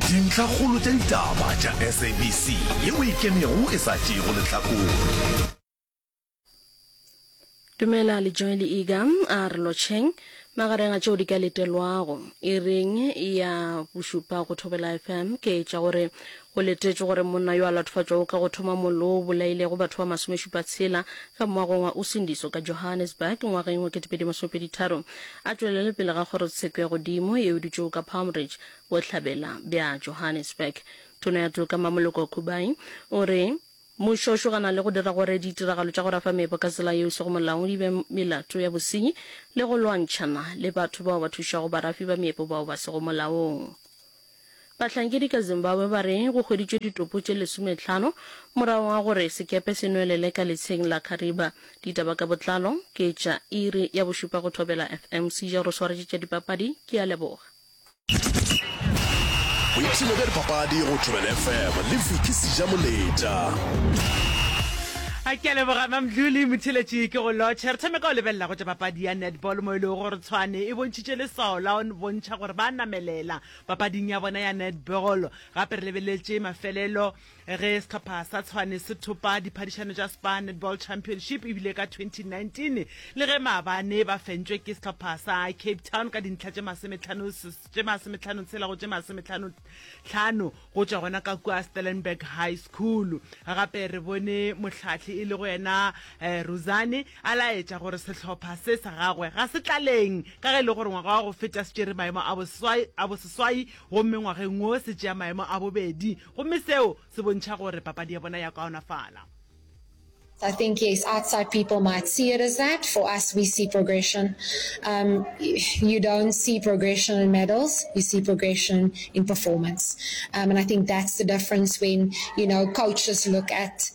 dintlhakgolo tša ditaba tša sabc yeo e kenego e sa tšeego lehlakore Dumela le Joel Iga a re lotšheng magareng a tšeo di ka letelwago e reng ya bošupa go Thobela FM ke tša gore Go letetšwe gore monna yo a latofatšwago ka go thoma mollo wo o bolailego batho ba masomešupa tshela ka moagong wa Usindiso ka Johannesburg ngwageng wa 2023 a tšwelele pele ga kgorotsheko ya godimo ye e dutšego ka Palm Ridge bohlabela bja Johannesburg. Tona ya toka Mmamoloko Khubai o re mmušo o šogana le go dira gore ditiragalo tša go rafa meepo ka tsela yeo e sego molaong di be melato ya bosenyi le go lwantšhana le batho bao ba thušago barafi ba meepo bao ba sego molaong. Bahlankedi ka Zimbabwe ba re go hweditšwe ditopo tše lesometlhano morago ga gore sekepe se nwelele ka letsheng la Kariba. Ditaba ka botlalo ke tša iri ya bošupa go Thobela FM. Seja o re swaretše tša dipapadi, ke a leboga. Boipshino bja dipapadi go Thobela FM le Vicky Seja Moleta. A ke leboga Mamdluli Mothiletši ke go lotšhe. Re thome ka go lebelela go tša papadi ya netball mo e lego gore Tshwane e bontšha bontšhitše leswao la go bontšha gore ba a namelela papading ya bona ya netball. Gape re lebeletše mafelelo ge sehlopha sa Tshwane se thopa diphadišano tša Spar Netball Championship e bile ka 2019 le ge maabane ba fentšwe ke sehlopha sa Cape Town ka dintlha tše masomethanotshela go tše masometlhanotlhano go tšwa gona ka kua Stellenberg High School. Gape re bone mohlahli e lego yena Ruzane. A laetša gore sehlopha se sa gagwe ga se tlaleng ka ge e le gore ngwaga wa go feta se tšere maemo a boseswai, a boseswai gomme ngwageng wo se tšea maemo a bobedi gomme seo se bontšha gore papadi ya bona ya kaonafala. I think yes outside people might see it as that, for us we see progression um you don't see progression in medals you see progression in performance um and I think that's the difference when you know coaches look at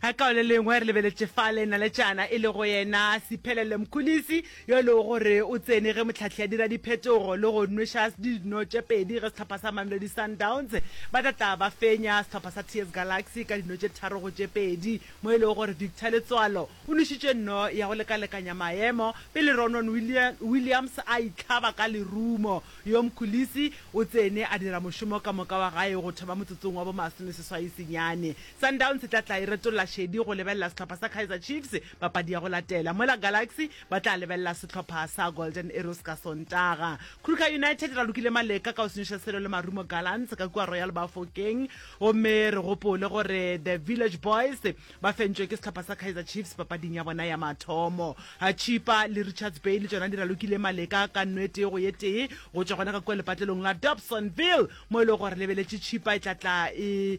a kao le lengwe re lebeletše fa le naletšana e le go yena sephelele mkhulisi yo e lego gore o tsene ge motlhahli a dira diphetogo le go nweša sdi dino tše pedi ge sehlopha sa mamelodi sundowns ba tla tla ba fenya sehlopha sa ts galaxy ka dino tše tharo go tše pedi mo e lego gore victor letswalo o nwešitše nno ya go lekalekanya maemo pele ronon williams a itlhaba ka lerumo yo mkhulisi o tsene a dira mošomo ka moka wa gae go thoma motsotsong wa bomasomeseswai senyane Sundowns e tla tla e retolla šedi go lebelela sehlopha sa Kaizer Chiefs papadi ya go latela, mola Galaxy ba tla lebelela sehlopha sa Golden Arrows ka Sontaga. Kruger United e ralokile maleka ka go senyoša selo le Marumo Gallants ka kua Royal Bafokeng, gomme re gopole gore The Village Boys ba fentšwe ke sehlopha sa Kaizer Chiefs papading ya bona ya mathomo. Chippa le Richards Bay le tšona di ralokile maleka ka no e tee go ye tee go tšwa gona ka kua lepatlelong la Dobsonville, mo e lego gore lebeletše Chippa e tla tla e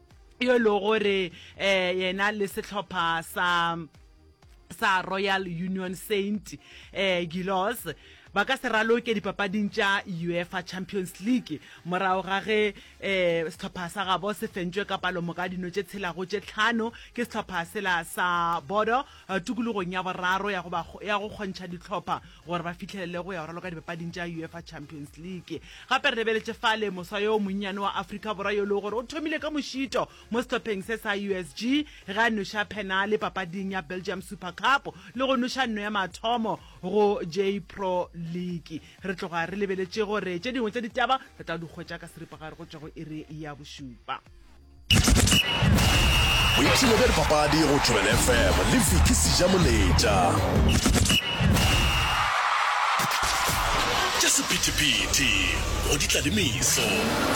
yo e lego gore um yena le sehlopha sa sa royal union saint um gilos ba ka se raloke dipapading tša uefa champions league morago ga ge um sehlopha sa gabo se fentšwe ka palomoka dino tše tshelago tše tlhano ke sehlopha sela sa bodo Tokologong ya boraro ya go ba ya go kgontšha dihlopha gore ba fihlelele go ya go raloka dipapading tša Uefa Champions League. Gape re lebeletše fale moswa yo monnyane wa Afrika Borwa yo e lego gore o thomile ka mošito mo sehlopheng se sa USG ge a noša phenale papading ya Belgium Super Cup le go noša nno ya mathomo go J-Pro League. Re tloga re lebeletše gore tše dingwe tša ditaba re tla di hwetša ka seripagare go tšwa go iri ya bošupa. boipshino bja dipapadi go tšhobele fm le viki seja moletša tša sephethephethe go di tla le meso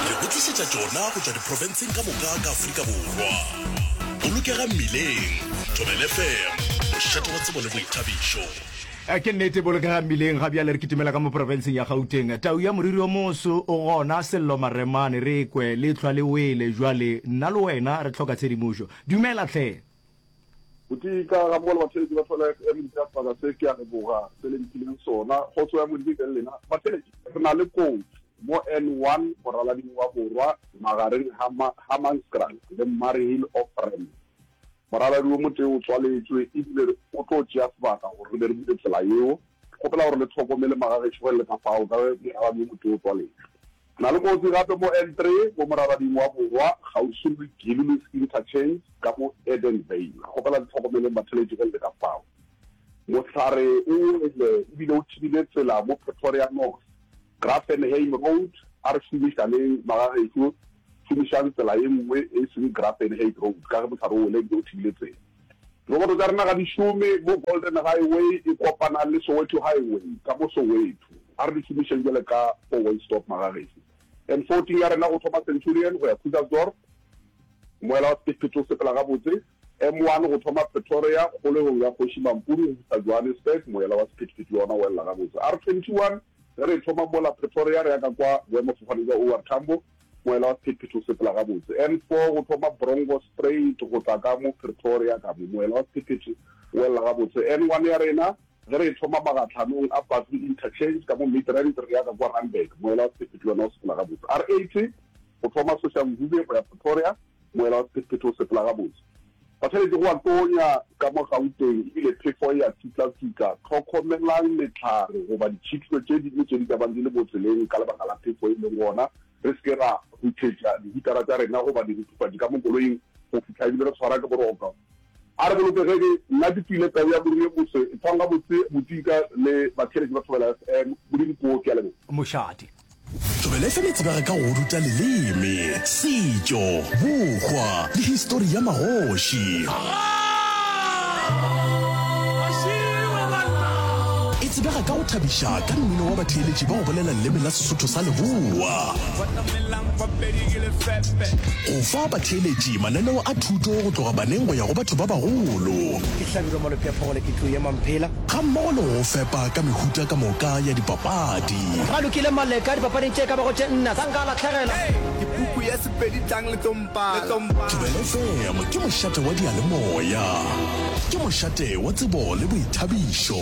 re go tlišetša tšona go tšwa diprofenseng ka moka ka aforika borwa bolokega mmileng tšhobele fm mošate wa tsebo le boithabišo Ke nnete, bolokega mmileng ga bjale re kitimela ka mo profenseng ya Gauteng. Tau ya moriri o moso o gona, Sello Maremane, re kwe, lehlwa le wele, bjale nna le wena re hloka tshedimošo. Dumela hle! Botee ka ga Mogolo Matheletši, batho ba la Emily ka sebaka se ke a leboga se le mphileng sona. Kgotso ya Modimo e be le lena Matheletši. Re na le kotsi mo N one moralading wa borwa magareng ga Hammanskraal le Murrayhill Off Ramp. Morabjadi wo motee o tswaletšwe e bile o tlo tšea sebaka gore re be re dire tsela yeo. Ke kgopela gore le tlhokomele magagešo ge le ka fao ka ge morabjadi wo motee o tswaletšwe. Re na le kotsi gape mo N three mo morabjading wa borwa kgauswi le Gillies Interchange ka mo Edenvale. Re kgopela le tlhokomeleng batheletši ge le le ka fao. Mohlare o wele e bile o thibile tsela mo Pretoria North. Graaff-Enheim Road, A re šomišaneng, magagešo, šomišang tsela ye nngwe e seng Graaff-Enheim Road ka ge mohlare o wele ebile o thibile tsela. Diroboto tša rena ga di šome mo Golden Highway e kopana le Soweto Highway ka mo Soweto. A re di šomišeng bjale ka four-way stop, magagešo. N14 ya rena go thoma Centurion go ya Krugersdorp, moela wa sephethephethe o sepela gabotse. M1 go thoma Pretoria, kgolegong ya Kgoši Mampuru go fihla Johannesburg, moela wa sephethephethe le wona o elela gabotse. R21 Ge re thoma mola Pretoria re ya ka kwa boemafofane bja OR Tambo, moela wa sephethephethe o sepela gabotse. N four go thoma Brongo straight go tla ka mo Pretoria ka mo, moela wa sephethephethe o welela gabotse. N one ya rena ge re e thoma magatlhanong a Patlu Interchange ka mo Midrand re ya ka kwa Randburg, moela wa sephethephethe le wona o sepela gabotse. R eighty go thoma Soshanguve go ya Pretoria. Moela wa sephethephethe o sepela gabotse. Ba tshwanetše go a tonya ka mo Gauteng ebile phefo e a tsitlatsitla. Hlokomelang mehlare goba ditšhitlo tše dingwe tše di ka bang di le mo tseleng ka lebaka la phefo e leng gona. Re se ke ra huthetša dihutara tša rena goba diruthufatši ka mo koloing go fihla ebile re tshwara ke boroko. A re bolokegege, nna ke tswile tau ya moriri e moswe, etswang gabotse bodika le batheeletši ba Thobela FM. Modimo koo, ke a leboga. Mošate. Thobela FM e tsebega ka go ruta leleme, setšo, bokgwa le histori ya magoši. E tsebega ka go thabiša ka mmino wa batheeletši ba go bolela leleme la Sesotho sa Leboa. Go fa batheeletši mananeo a thuto go tloga baneng go ya go batho ba bagolo. Ke hlabirwa Malopheapho gona ke tlo ema mphela. Gammogo le go go fepa ka mehuta ka moka ya dipapadi. Ba lokile Maleka dipapading tše e ka bago tše nna tsa nka lahlegela. Ke puku ya Sepedi tlang le tlo mpala. Thobela FM ke mošate wa diyalemoya. Ke mošate wa tsebo le boithabišo.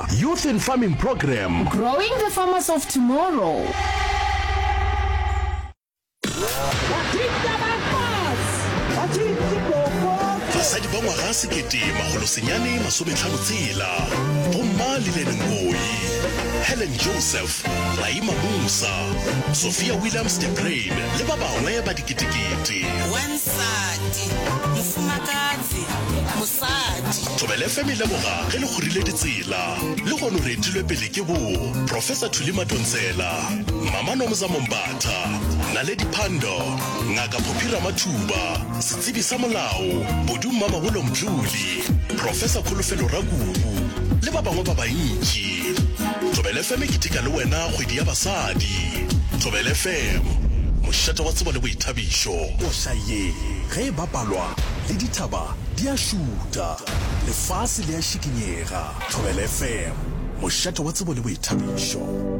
Youth in Farming Programme. Growing the farmers of tomorrow. basadi ba ngwaga sekete magolosenyane masometlhano tsela bomma lilene ngoi helen joseph raima musa sophia williams de brain le ba bangwe ba diketekete Thobela FM e leboga ge le kgorile ditsela. Lehono re etilwe pele ke bo Professor Thuli Matontsela, Mama Nomza Mombatha, Naledi Pandor, Ngaka Phophi Ramathuba, Setsebi sa Molao, Bodu Mmamagolo Mdluli, Professor Kholofelo Rakubu le ba bangwe ba bantši. Thobela FM e keteka le wena kgwedi ya basadi. Thobela FM, mošate wa tsebo le boithabišo. Koša ye ge e bapalwa le dithaba. Di a šuta. Lefase le a šikinyega. Thobela FM, mošate wa tsebo le boithabišo.